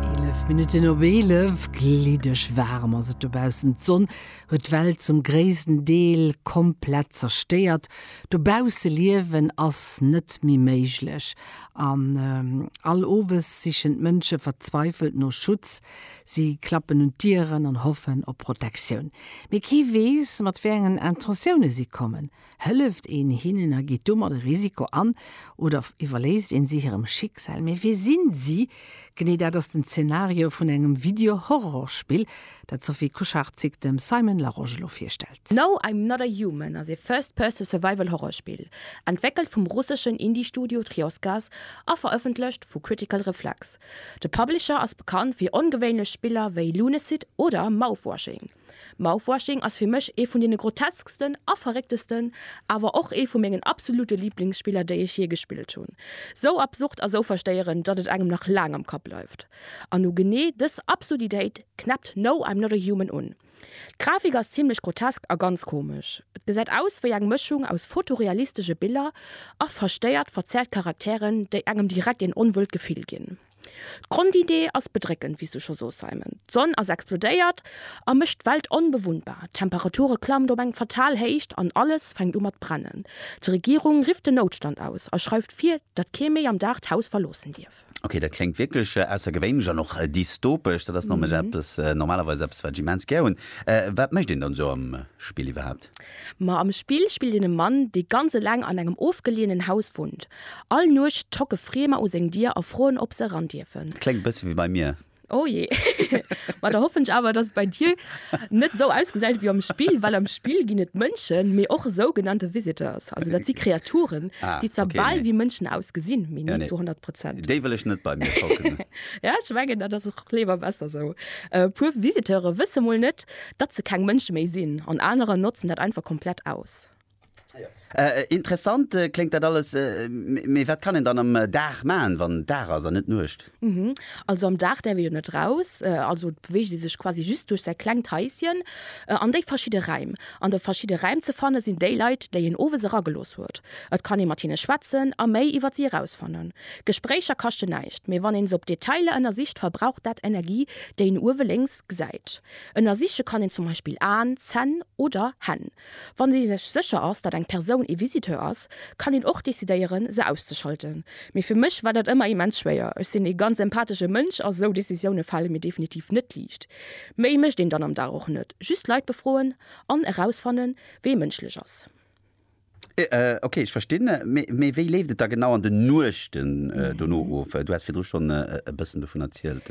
Eelef Minutten op eelef, gliddeg waarem ass et dobaussen. D'Sonn huet d'Welt zum gréissten Deel komplett zerstéiert. Dobausse liewen ass net méi méiglech an all Owes sichen d'Mënsche verzweifelt no Schutz. Si klappen un d'Dieren an hoffen op Protektioun. Mee kee weess, mat wéi engen Intentiounen si kommen. Hëlleft een hinnen a geet domat e Risiko an oder iwwerléisst een si hirem Schicksal? Mee wie sinn si? Genee dat ass den Zenario vun engem Video-Horrorspill, dat d'Sophie Kucharczyk dem Simon Larosche elo virstellt. No I'm Not a Human ass e First-Person-Survival-Horrorspill, entwéckelt vum russeschen Indie-Studio Trioscas a verëffentlecht vu Critical Reflex. De Publisher ass bekannt fir ongewéinlech Spiller wéi Lunacid oder Mouthwashing. Mouthwashing ass fir mech ee vun deene grotesksten a verrécktesten, awer och ee vu mengen absolute Lieblingsspiller déi ech jee gespillt hunn. Sou absurd a sou verstéierend, datt et engem nach laang am Kapp bleift. An u genee dës Absurditéit knäppt No I'm Not A Human un. D'Grafik ass zimlech grotesk a ganz komesch. Et gesäit aus wéi eng Mëschung aus fotorealistesche Biller a verstéiert verzerrt Charakteren, déi engem direkt een onwuelt Gefill ginn. D'Grondidee ass bedréckend, wéi s du scho soos, Simon. D'Sonn ass explodéiert a mécht d'Welt onbewunnbar. D'Temperature klammt op eng fatal Héicht an alles fänkt u mat brennen. D'Regierung rifft den Noutstand aus a schreift vir, datt kee méi am Dag d'Haus verloossen dierf. Ok, dat kléngt wierklech aussergewéinlech an och dystopesch. Dat ass nämlech eppes, normalerweis eppes, wat ech immens gär hunn. Wat mécht een dann esou am Spill iwwerhaapt? Ma am Spill spillt een e Mann, dee ganz eleng an engem ofgeleeënen Haus wunnt. All Nuecht tocke Friemer u seng Dier a froen, ob se eran dierfen. Kléngt e bësse wéi bei mir. Oh jee. Ma da hoffen ech awer, dass et bei dir net esou ausgesäit wéi am Spill, well am Spill ginn et Mënschen, mee och sougenannte Visitors. Also dat si Kreaturen, déi zwar bal wéi Mënschen ausgesinn, mee ni zu honnert Prozent. Déi wëll ech net bei mir tocken. Ja, ech mengen, dat ass och léiwer besser esou. E puer Visiteure wësse mol net, datt se keng Mënsche méi sinn, an anerer notzen dat einfach komplett aus. Interessant kléngt dat alles, mee wat kann een dann am Dag maachen, wann Dag ass an net Nuecht? Also am Dag däerf ee jo net eraus, also beweegt ee sech quasi just duerch säi klengt Haisschen an déi verschidde Räim. An de verschidde Räim ze fanne sinn déi Leit, déi een owes eragelooss huet. Et kann ee mat hinne schwätzen a méi iwwer si erausfannen. Gespréicher kaschten näischt, mee wann een se op Detailer ënnersicht, verbraucht dat Energie, déi een uewe lénks gesäit. Ënnersiche kann een zum Beispill Aen, Zänn oder Hänn. Wann ee sech sécher ass, datt eng Persoun ee Visiteur ass, kann een och decidéieren, se auszeschalten. Mee fir mech war dat ëmmer immens schwéier. Ech sinn ee ganz empathesche Mënsch a sou Decisioune fale mir definitiv net liicht. Méi mécht een dann am Dag och net, just Leit befroen an erausfannen, wee mënschlech ass. Ok, ech verstinn. Mee wéi leeft et da genau an den Nuechten dono of? Du has virdru schonn e bëssen dovun erzielt.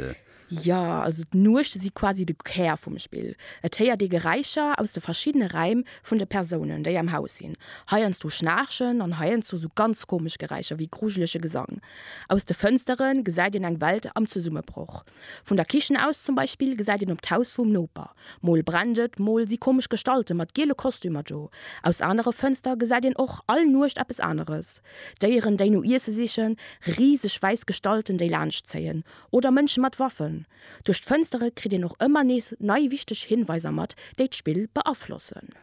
Jo, also d'Nuechte si quasi de Kär vum Spill. Et héiert ee Geräischer aus de verschiddene Räim vun de Persounen, déi am Haus sinn. Heiansdo Schnaarchen an heiansdo esou ganz komesch Geräischer wéi grujelege Gesang. Aus de Fënstere gesäit een eng Welt am Zesummebroch. Vun der Kichen aus zum Beispill gesäit een op d'Haus vum Noper. Mol brennt et, mol si komesch Gestalte mat giele Kostümer do. Aus anere Fënstere gesäit een och all Nuecht eppes aneres, Déieren, déi no Iesse sichen, riseg wäiss Gestalten, déi laanschtzéien, oder Mënsche mat Waffen. Duerch d'Fënstere kritt een och ëmmer nees nei wichteg Hinweiser mat, déi d'Spill beaflossen.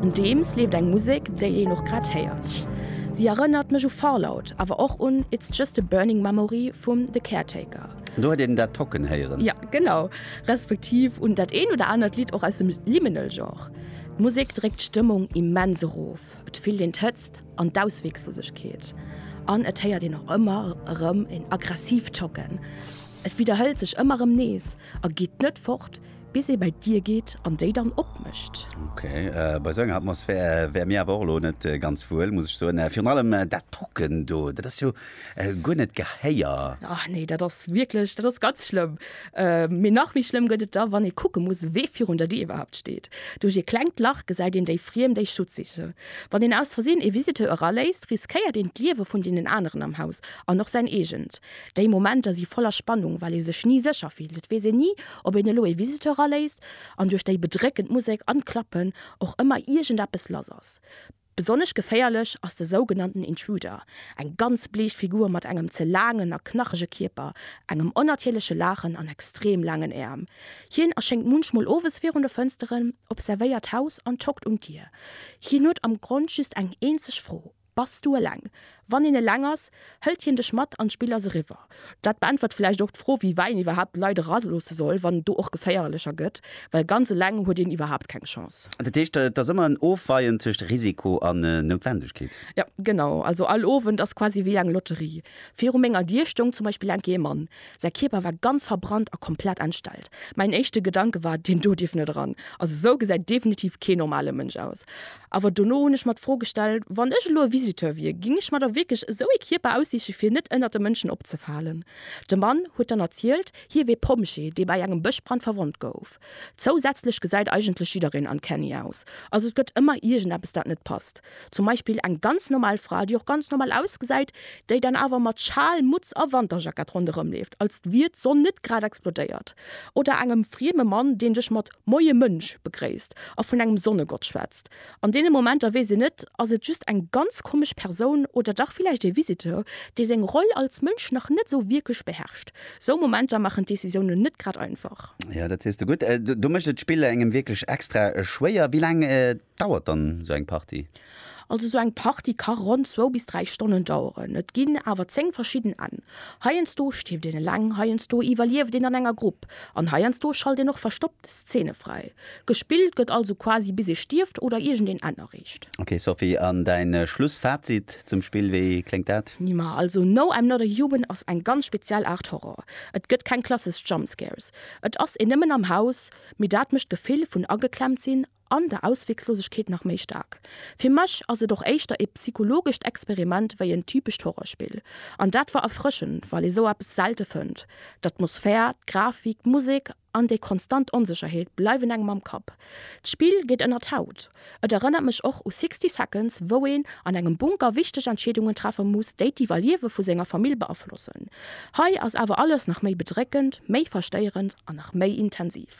Nodeems leeft eng Musek, déi een och grad héiert. Si erënnert mech u Fallout, awer och un It's Just a Burning Memory vum The Caretaker. Do huet een dat Tocken héieren. Jo, genau. Respektiv un dat eent oder anert Lidd och aus dem Liminal-Genre. D'Musek dréckt d'Stëmmung immens erof. op, et fillt een d'Hëtzt an d'Ausweeglosegkeet an et héiert een och ëmmer erëm en aggressiivt Tocken. Et widderhëlt sech ëmmer erëm nees a geet net fort, bis ee bei d'Dier geet an déi dann opmécht. Ok, bei esou enger Atmosphär wär mir awer och elo net ganz wuel, muss ech soen. Virun allem dat Tocken do, dat ass jo Guer net Gehéier. Ach nee, dat ass wierklech, dat ass ganz schlëmm. Mee nach méi schlëmm gëtt et da, wann ee kucke muss, wee virun der Dier iwwerhaapt steet. Duerch ee klengt Lach gesäit een déi Friem, déi Schutz sichen. Wann een aus Versinn ee Visiteur eraléisst, riskéiert een d'Liewe vun deenen aneren am Haus an och säin eegent. Déi Momenter si voller Spannung, well ee sech ni sécher fillt. Et weess een ni, ob een elo ee Visiteur eraléisst an duerch déi bedréckend Musek an d'Klappen och ëmmer iergendeppes lass ass. Besonnesch geféierlech ass de sougenannten Intruder, eng ganz bleech Figur mat engem ze laangen a knachege Kierper, engem onnatierleche Laachen an extrem laangen Äerm. Hien erschéngt munchmol owes virun de Fënsteren, observéiert d'Haus an tockt un d'Dier. Hien huet am Grond just eng eenzeg Fro, Bass du eleng? Wann een eleng ass, hëlt hien dech mat an d'Spill ass eriwwer. Dat beäntwert vläicht och d'Fro, wéi wei een iwwerhaapt d'Leit eraloosse soll, wann et do och geféierlecher gëtt, well ganz eleng huet een iwwerhaapt keng Chance. Dat heescht, et ass ëmmer en Ofweien tëscht Risiko an Noutwendegkeet? Jo, genau. Also all Owend ass quasi wéi eng Lotterie. Viru menger Dier stoung zum Beispill eng Kéier ee Mann. Säi Kierper war ganz verbrannt a komplett entstellt. Mäin éischte Gedanke war, Deen do dierf net eran. Also esou gesäit definitiv kee normale Mënsch aus. Awer dono hunn ech mer d'Fro gestell, Wann ech elo e Visiteur wier, géing ech mer da wierklech esou ee Kierper aussiche fir net ënnert de Mënschen opzefalen? De Mann huet dann erzielt, hie wier Pompjee, dee bei engem Bëschbrand verwonnt gouf. Zousätzlech gesäit eigentlech jiddereen uncanny aus. Also et gëtt ëmmer iergendeppes dat net passt. Zum Beispill eng ganz normal Fra, déi och ganz normal ausgesäit, déi dann awer mat Schal, Mutz a Wanterjackett ronderëmleeft, als wier d'Sonn net grad explodéiert. Oder engem frieme Mann, deen dech mat Moie Mënsch begréisst a vun engem Sonnegott schwätzt. An deene Momenter weess een net, ass et just eng ganz komesch Persoun oder dach villäicht ee Visiteur, dee seng Roll als Mënsch nach net esou wierklech beherrscht. Sou Momenter maachen d'Decisiounen net grad einfach. Jo, dat sees de gutt. Do mécht et d'Spill engem wierklech extra schwéier. Wéi laang Dauert dann sou eng Party? Also sou eng Party ka ronn zwou bis dräi Stonnen daueren. Et ginn awer 10 verschidden Enn. Heiansdo stierft een eleng, heiansdo iwwerlieft een an enger Grupp an heiansdo schalt een och verstoppt Szene fräi. Gespillt gëtt also quasi bis ee stierft oder iergendeen Enn erreecht. Ok Sophie, an däin Schlussfazit zum Spill, wéi kléngt dat? Nima, also No I'm Not A Human ass eng ganz speziell Aart Horror. Et gëtt keng klassesch Jumpscares. Et ass een nëmmen am Haus, mee dat mécht d'Gefill vun ageklemmt sinn An der Ausweglosegkeet nach méi staark. Fir mech ass et och éischter ee psychologescht Experiment wéi en typescht Horrorspill. An dat war erfrëschend, well ee sou eppes selte fënnt. D'Atmosphär, d'Grafik, d'Musek an déi konstant Onsécherheet bleiwen engem am Kapp. D'Spill geet ënner d'Haut. Et erënnert mech och u Sixty Seconds, wou een an engem Bunker wichteg Entscheedungen treffe muss, déi d'Iwwerliewe vu senger Famill beaflossen. Hei ass awer alles nach méi bedréckend, méi verstéierend an nach méi intensiv.